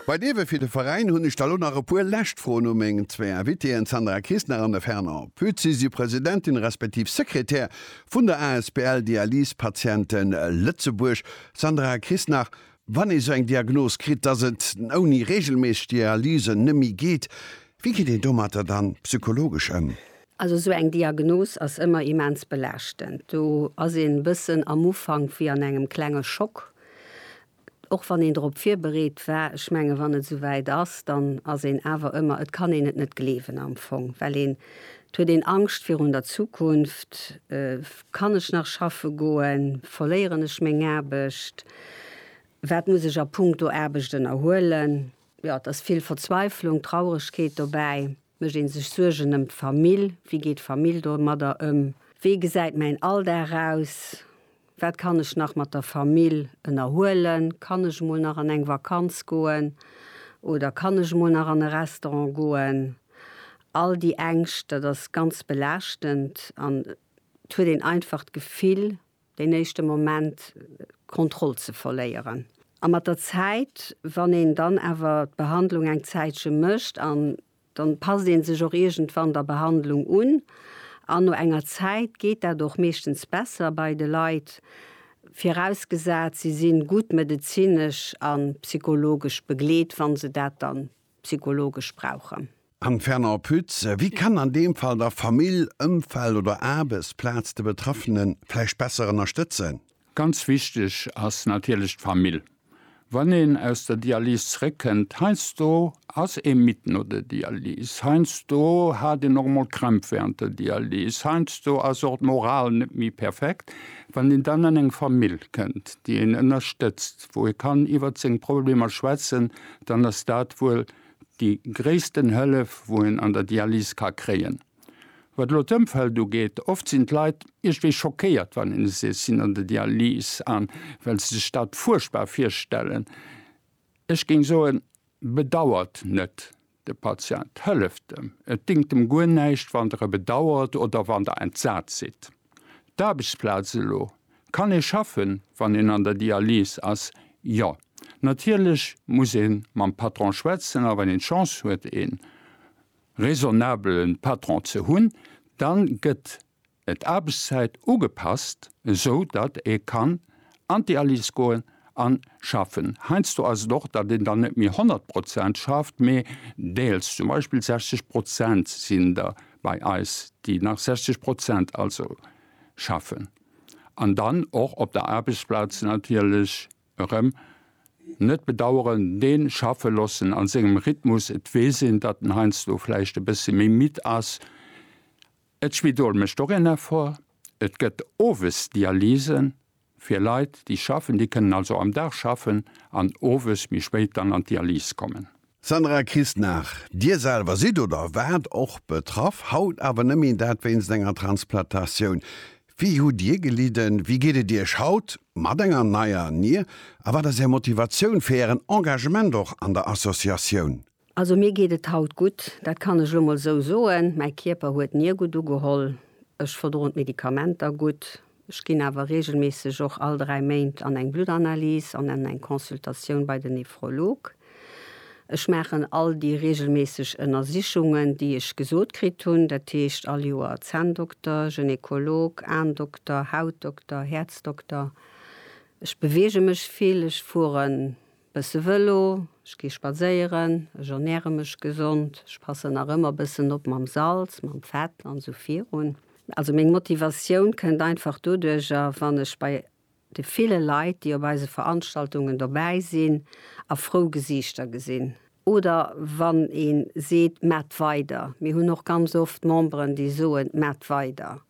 Bei Dewe fir de Veräin hunn ech da lo nach e puer lescht Froen u meng zwee Invitéen, d'Sandra Kistner an de Fernand Pütz. Si si Presidentin respektiv Sekretär vun der asbl Dialysepatienten Lëtzebuerg. Sandra Kistner, Wann ee sou eng Diagnos kritt, dass et ouni reegelméisseg Dialysen net méi geet, wéi geet een domatter dann psychologesch ëm? Also esou eng Diagnos ass ëmmer immens belaaschtend. Do ass een e bëssen am Ufank wéi an engem klenge Schock, och wann een drop virbereet war. Ech mengen, wann et esou wäit ass, dann ass een awer ëmmer, et kann een et net gleewen am Fong, well een, et huet een Angscht virun der Zukunft, Kann ech nach schaffe goen? Verléieren ech meng Aarbecht? Wat muss ech a Punkto Aarbecht ënnerhuelen? Jo, et ass vill Verzweiflung, Trauregkeet dobäi. Mécht ee sech Suergen ëm d'Famill? Wéi geet d'Famill domadder ëm? Wéi gesäit mäin Alldag aus? Wat kann ech nach mat der Famill ënnerhuelen? Kann ech emol nach an eng Vakanz goen? Oder kann ech emol nach an e Restaurant goen? All déi Ängscht, dat ass ganz belaaschtend an et huet een einfach d'Gefill, deen éischte Moment d'Kontroll ze verléieren. A mat der Zäit, wann een dann awer d'Behandlung eng Zäitche mécht an dann passt ee sech och iergendwann der Behandlung un an no enger Zäit geet dat och meeschtens besser bei de Leit, virausgesat, se si gutt medezinesch a psychologesch begleet, wa se dat dann psychologesch brauchen. Anne Fernand Pütz, Wie kann an deem Fall da Famill, Ëmfeld oder Aarbechtsplaz de Betraffene vläicht besser ënnerstëtzen? Ganz wichteg ass natierlech d'Famill. Wann een aus der Dialys zréckkënnt, heiansdo ass ee midd no der Dialys, heiansdo hat een och mol Krämp während der Dialys, heiansdo ass och d'Moral net méi perfekt, wann een dann an eng Famill kënnt, déi een ënnerstëtzt, wou ee kann iwwert seng Problemer schwätzen, dann ass dat wuel déi gréissten Hëllef, wou een an der Dialyse ka kréien. Wat elo d'Ëmfeld ugeet, oft sinn d'Leit iergwéi schockéiert, wann een seet, si sinn an der Dialyse an well se sech dat fuerchtbar virstellen. Ech géing soen, bedauert net. De Patient hëlleft em. Et déngt em guer näischt, wann Der e bedauert oder wann Der entsat sidd. D'Aarbechtsplaz elo, Kann ee schaffen, wann een an der Dialyse ass? Jo. Natierlech muss ee mam Patron schwätzen a wann een d'Chance huet, ee raisonnabele Patron ze hunn, da gëtt d'Aarbechtszäit ugepasst, esou datt ee kann an d'Dialyse goen a schaffen. Heiansdo ass et och, datt een dann net méi 100 Prozent schafft, mee deels, zum Beispill 60 Prozent sinn der bei eis, déi nach 60 Prozent also schaffen an dann och op der Aarbechtsplaz natierlech erëm net bedaueren, dee schaffe loossen a sengem Rhythmus. Et weess een, datt en heiansdo vläicht e bësse méi midd ass. D'Spidol mécht och een Effort. Et gëtt owes Dialyse fir Leit, déi schaffen. Déi kënnen also am Dag schaffen an owes méi spéit dann an d'Dialyse kommen. Sandra Christnagh, Dir selwer sidd oder waart och betraff, haut awer nëmmen dat wéinst enger Transplantatioun. Wéi hutt Dir gelidden? Wéi geet et Iech haut mat enger neier Nier? A wat ass Är Motivatioun fir Ären Engagement och an der Associatioun? Also mir geet et haut gutt, dat kann ech elo mol esou soen. Mäi Kierper huet nie gutt ugeholl, ech verdroen d'Medikamenter gutt. Ech ginn awer reegelméisseg och all 3 Méint an eng Bluttanalyse an an eng Consultatioun bei den Nephrolog. Ech maachen all déi reegelméisseg Ënnersichungen, déi ech gesot kritt hunn, dat heescht all Joer Zänndokter, Gynekolog, Aendokter, Hautdokter, Häerzdokter. Ech beweege mech vill, ech fueren Bësse Vëlo, ech gi spadséieren, ech ernäre mech gesond, ech passen nach ëmmer bëssen op mam Salz, mam Fett an esou virun. Also meng Motivatioun kënnt einfach doduercher, wann ech bei de ville Leit, déi op eise Veranstaltungen dobäi sinn, a frou Gesiichter gesinn. Oder wann ee seet, Maacht weider! Mir hunn och ganz oft Memberen, déi soen, Maacht weider!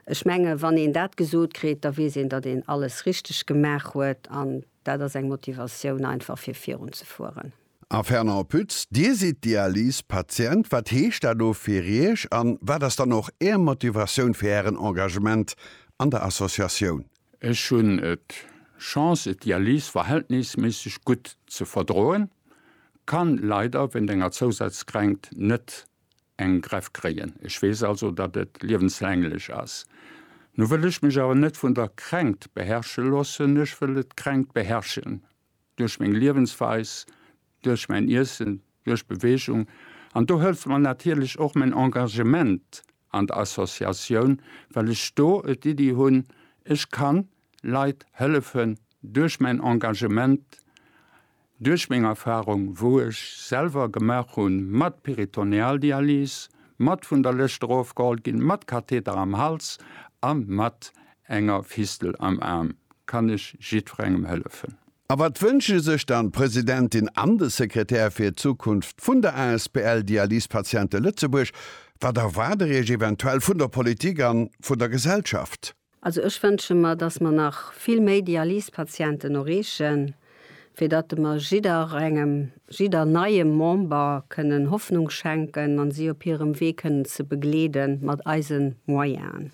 Ech menge wann een dat gesot kritt, da weess een, datt een alles richteg gemaach huet an Dat ass eng Motivatioun einfach fir virun ze fueren. A Fernand Pütz, Dir sidd Dialysepatient. Wat heescht dat do fir Iech an wat ass dann och Är Motivatioun fir Ären Engagement an der Associatioun? Ech hunn d'Chance et d'Dialyse verhältnisméisseg gutt ze verdroen, kann leider wéint enger Zousazkränkt net en Greff kréien. Ech weess also, datt et liewenslänglech ass. Nu wëll ech mech awer net vun der Kränkt beherrsche loossen, ech wëll d'Kränkt beherrschen duerch meng Liewensweis, duerch mäin Iessen, duerch Beweegung. An do hëlleft mer natierlech och mäin Engagement an der Associatioun, well ech do d'Iddi hunn, ech kann Leit hëllefen duerch mäin Engagement, duerch meng Erfahrung, wou ech selwer gemaach hunn, mat Peritonealdialyse, mat vun der Lëscht erofgeholl ginn, mat Katheter am Hals a mat enger Fistel am Aarm, kann ech jiddwerengem hëllefen. A wat wënsche sech dann d'Presidentin an de Sekretär fir d'Zukunft vun der asbl Dialyse Patiente Lëtzebuerg? Wat erwaart der iech eventuell vun der Politik an vun der Gesellschaft? Also ech wënsche mer, datt mer nach vill méi Dialysepatienten erreechen, fir datt mer jidderengem, jidder neie Member kënnen Hoffnung schenken an si op hirem Wee kënnen ze begleede mat eise Moyenen.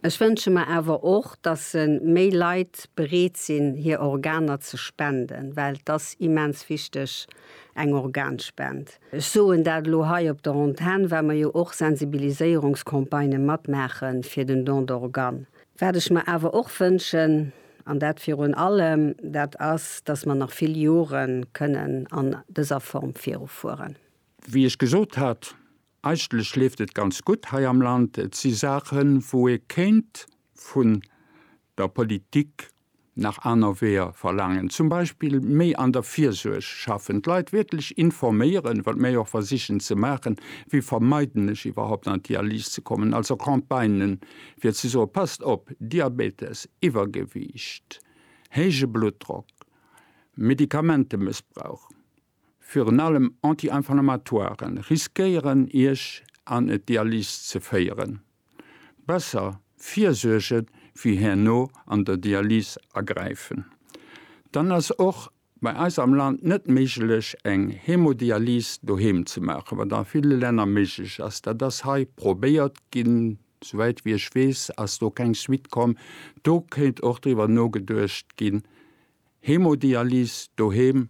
Ech wënsche mer awer och, datt se méi Leit bereet sinn, hir Organer ze spenden, well 't ass immens wichteg, eng Organspend. Ech soen dat elo hei op der Antenn, well mer jo och Sensibiliséierungscampagnë matmaache fir den Don d'organe. Wat ech mer awer och wënschen, an dat virun allem, dat ass, dass mer nach vill Jore kënnen an dëser Form virufueren. Wéi ech gesot hat, eigentlech leeft et ganz gutt hei am Land. Et si Saachen, wou ee kéint vun der Politik Nach aner Weeër verlaangen zum Beispill méi an der Virsuerg schaffen, d'Leit wierklech informéieren, wat mir jo och versichen ze maachen, wéi vermeiden ech iwwerhaupt an d'Dialyse ze kommen, also Campagnen fir ze soen, passt op, Diabetes, Iwwergewiicht, héije Bluttdrock, Medikamentemëssbrauch, virun allem Anti-Inflammatoiren, riskéieren Iech an et Dialys ze féieren. Besser virsuergen wéi herno an der Dialys agräifen. Dann ass och bei eis am Land net méiglech eng Hemodialys doheem ze maachen, wat a ville Länner méiglech ass. Dat ass hei probéiert ginn, souwäit wéi ech weess ass do keng Suite komm. Do kéint och driwwer nogeduecht ginn Hemodialyse doheem,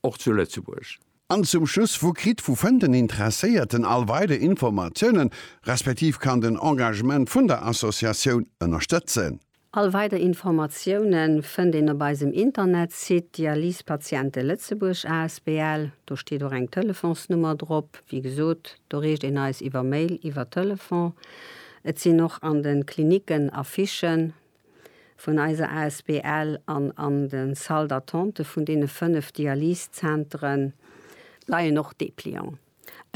och zu Lëtzebuerg. An zum Schluss, wou kritt, wou fënnt den Interesséierten all weider Informatiounen, respektiv kann den Engagement vun der Associatioun ënnerstëtzen? All weider Informatioune fënnt een op eisem Internetsite Dialysepatiente Lëtzebuerg asbl. Do steet och eng Telefonsnummer drop. Wéi gesot, do reecht een eis iwwer Mail, iwwer Telefon. Et sinn och an de Klinicken Affichen. vun eiser Asbl an an de Salle d'attente vun deene 5 Dialysezenteren leien och Deplianten.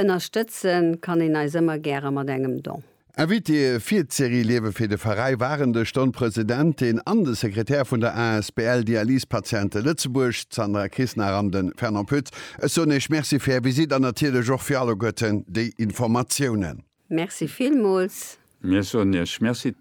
Ënnerstëtze kann een eis ëmmer gäre mat engem Don. Invitéë fir d'Serie Liewe fir de Veräi waren de Stonn Presidentin an de Sekretär vun der Asbl Dialysepatiente Lëtzebuerg, d'Sandra Kisnar an de Fernand Pütz. Ech soen Iech Merci fir Är Visite an natierlech och fir alleguerten déi Informatiounen. Merci villmools. Mir soen Iech Merci.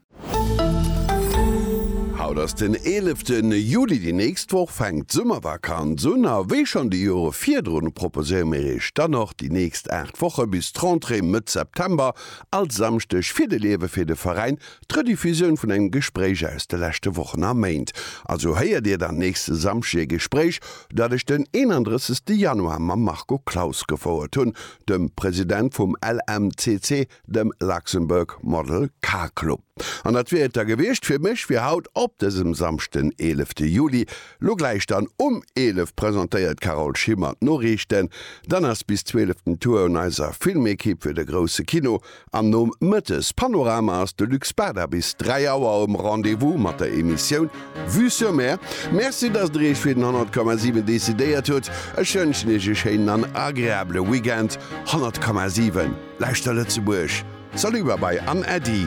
Haut ass den 11 Juli, déi nächst Woch fänkt d'Summervakanz un a wéi schonn déi Jore virdrun proposéiere mir Iech dann och déi nächst 8 Woche bis d'Rentrée Mëtt September all Samschdeg Fir de Liewe fir de Veräin D'Rediffusioun vun engem Gespréich aus de leschte Wochen a Méint. Also héiert Dir dann nächste Samschdeg e Gespréich, dat ech den 31 Januar mam Marco Claus gefouert hunn, dem President vum LMCC, dem Luxembourg Model Car Club. An dat wier et da gewiescht fir mech fir haut op dësem Samschd den 11 Juli. Lo gläich dann um 11 presentéiert d'Carole Schimmer d'Noriichten. Dann ass bis 12 den Tour un eiser Filmekipp fir de grousse Kino. Am Nomëttes Panorama ass de Luc Spada bis 3 Auer um Rendez-vous mat der Emissioun Vue sur Mer. Merci, dass Der Iech fir den 100,7 decidéiert hutt. Ech wënschen Iech e schéinen an agreabele Weekend. 100,7 Lauschter Lëtzebuerg! Salut, Babai an Äddi!